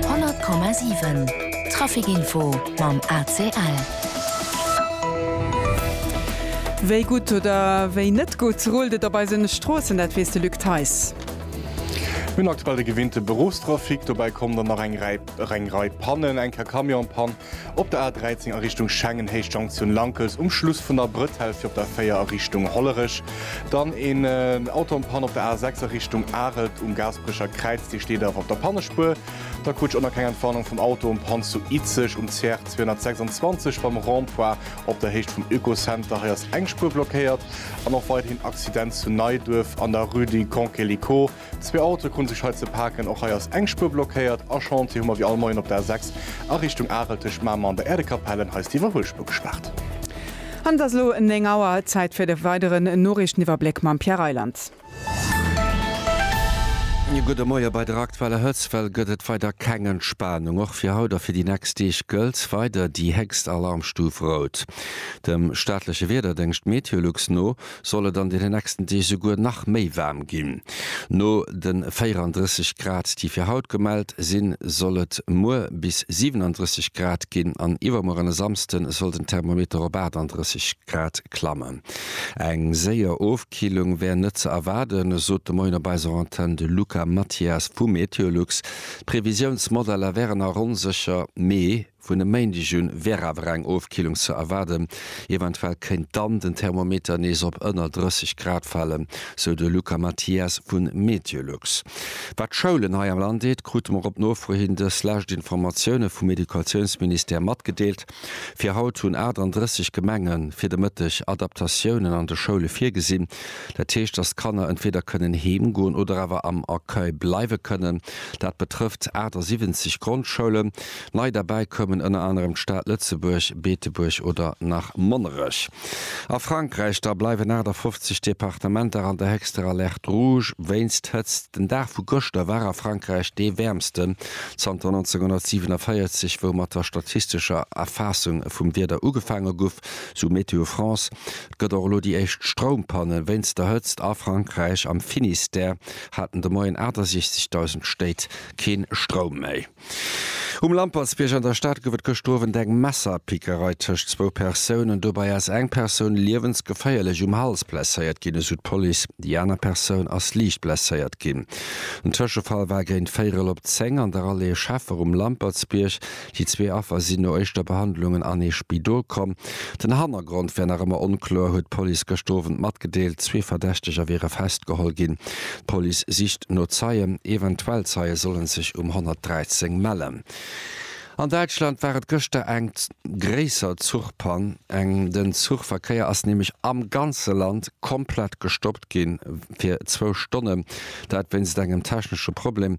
100,7 Trafic Info mam ACL. Wéi gutt oder wéi net gutt rullt et op eise Stroossen, dat weess de Luc Theis. Mir hunn aktuell de gewinnte Beruffstrafic, dobäi kommen der nach eng Rei Pannen, eng Car Camionspann, Op der A13 a Richtung Schengen héich Jonktioun Lankels um Schluss vun der Brëtell fir op der 4 a Richtung Hollerech. Dann een Auto an Pann op der A6 a Richtung Arelt um Gaasperecher Kräiz, dee steet awer op der Pannespuer. Da krut ech och nach keng Entwarnung vum Auto um Pann zu Izeg um CR 226 beim Rond-point op der Héicht vum Oekocenter. Hei ass eng Spuer blockéiert. An och weiderhin Accident zu Neiduerf an der Rue du Concelico. Zwee Autoe krute sech hei ze paken. Och hei ass eng Spuer blockéiert. A Chantier hu mer wéi all Moien op der A6 a Richtung Arel tëscht Mamer an der Äerdekapell en. Hei ass déi Iwwerhuelspuer gespaart. An et ass elo 9 Auer. Zäit fir de weideren Noriichteniwwerbléck mam Pierre Reyland. E gudde Moie bei der aktueller Hëtzt. Well gëtt et weider keng Entspanung. Och fir haut a fir déi nächst Deeg gëllt weider déi héchst Alarmstuf Rout. Dem staatleche Wiederdéngscht Meteolux no soll et an deene nächsten Deeg souguer nach méi waarm ginn. No de 34 Grad, déi fir haut gemellt sinn, soll et muer bis 37 Grad ginn an iwwermuer an e Samsde soll den Thermometer op 38 Grad klammen. Eng séier Ofkillung wär net ze erwaarden, sot de Moien op eiser Antenn de Luca Mathias vu Meteolux. D'Previsiounsmodeller wären a ronn sécher Mee. Vun e Méindeg un wär awer eng Ofkillung ze erwaarden. Eventuell kéint dann den Thermometer nees op ënner 30 Grad falen, sou de Luca Mathias vu Meteolux. Wat d'Schoulen hei am Land eet, krute mer op Nofro hin dës lescht Informatioune vum Educatiounsministère matgedeelt. Fir haut hunn 38 Gemenge fir de Mëtteg Adaptatiounen an de Schoule virgesinn. Dat heescht, datt d'Kanner entweeder kënnen heem goen oder awer am Accueil bleiwe kënnen. Dat betrëfft 78 Grondschoulen. Nei derbäi koumen ënner anerem d'Stad Lëtzebuerg, Beetebuerg oder nach Monnerech. A Frankräich da bleiwen 58 Departementer an der héchster Alerte rouge wéinst Hëtzt. Den Dag vu gëschter war a Frankräich dee wäermsten zanter 1947, wou mat der statistescher Erfaassung vum Wieder ugefaange guff, sou Météo France. Et gëtt och elo déi éischt Stroumpanne wéinst der Hëtzt a Frankräich. Am Finistère haten de Moien 68.000 Stéit kee Stroum méi. Um Lampertsbierg an der Stad gouf et gëschter Owend eng Messerpickerei tëscht zwou Persounen. Dobäi ass eng Persoun liewensgeféierlech um Hals blesséiert ginn, esou d'Police. Déi aner Persoun ass liicht blesséiert ginn. Den Tëschefall war géint véierel op zéng an der Allée Scheffer um Lampertsbierg. Déi zwee Affer sinn no éischter Behandlungen an ee Spidol komm. Den Hannergrond wär nach ëmmer onkloer, huet d'Police gëschter Owend matgedeelt. Zwee Verdächteger wiere festgeholl ginn. D'Police sicht no Zeien. Eventuell Zeie solle sech um 113 mellen. An Däitschland war et gëschter eng gréisser Zuchpann. Den Zuchverkéier ass nämlech am ganze Land komplett gestoppt gi fir zwou Stonnen. Dat wéinst engem technesche Problem.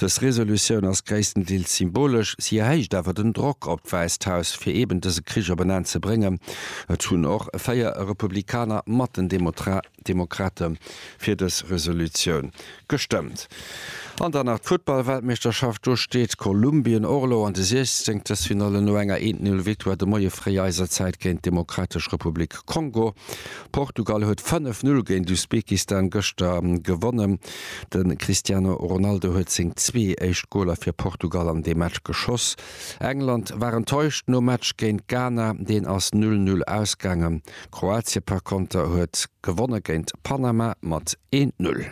Dës Resolutioun ass gréisstendeels symbolesch, si erhéicht awer den Drock op d'Wäisst Haus, fir eben dëse Krich op en Enn ze bréngen. Et hunn och véier Republikaner mat den Demokrate fir dës Resolutioun gestëmmt. An dann nach d'Futtballweltmeeschterschaft. Do steet Kolumbien och elo an de Siechzenktelfinalle no enger Eent-Null-Victoire de Moie fréi eiser Zäit géint d'Demokratesch Republik Kongo. Portugal huet 5-Null géint Usbekistan gëschter gewonnen. De Cristiano Ronaldo huet seng zwee éischt Goler fir Portugal an deem Match geschoss. England war enttäuscht nom Match géint Ghana, deen ass 0, 0 ausgaangen. Kroatie par konter huet gewonne géint Panama mat 1, 0.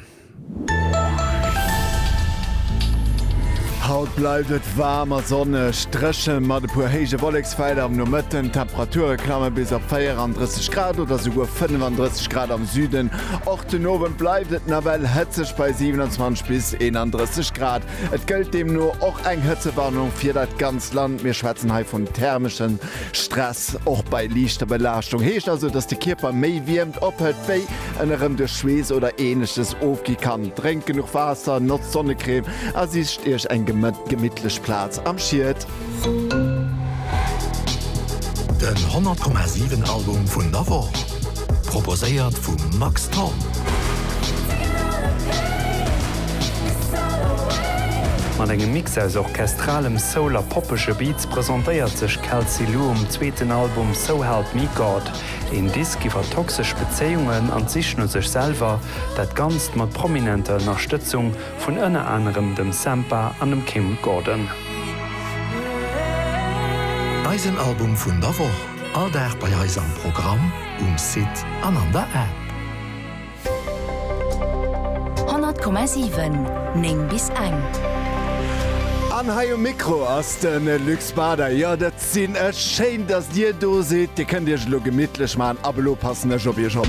Haut bleift et waarm a sonneg, dréchen mat e puer héije Wolleksfelder am Nomëtten. D'Temperature klamme bis op 34 Grad oder souguer 35 Grad am Süden. Och den Owend bleift et nawell hëtzeg bei 27 bis 31 Grad. Et gëllt deemno och eng Hëtzewarnung fir dat ganzt Land. Mir schwätzen hei vum thermeschen Stress, och bei liichter Belaaschtung. Heescht also, dass de Kierper méi Wiermt ophëlt, wéi en erëm duerch Schweess oder Ähnleches ofgi kann. Drénkt genuch Waasser, notzt Sonnecrème a sicht Iech eng gemittlech Plaz am Schied. Den 100 Komma 7 Album vun der Woch, proposéiert vum Max Thorn. Mat engem Mix aus orchestralem Soul a poppege Beats presentéiert sech Kelsey Lu um zweeten Album So Help Me God, een Disk iwwer toxesch Bezéiungen an d'Sich no sech selwer, dat Ganzt mat prominenter Ënnerstëtzung vun ënner anerem dem Sampha an dem Kim Gordon. Eisen Album vun der Woch, all Dag bei eis am Programm, um Site an an der App. 100,7, 9 bis eng. An hei um Mikro ass de Luc Spada. Jo, dat sinn ech. Schéin, datt Dir do sidd. Dir kënnt Iech elo gemittlech maachen. Ab elo passen ech op Iech op.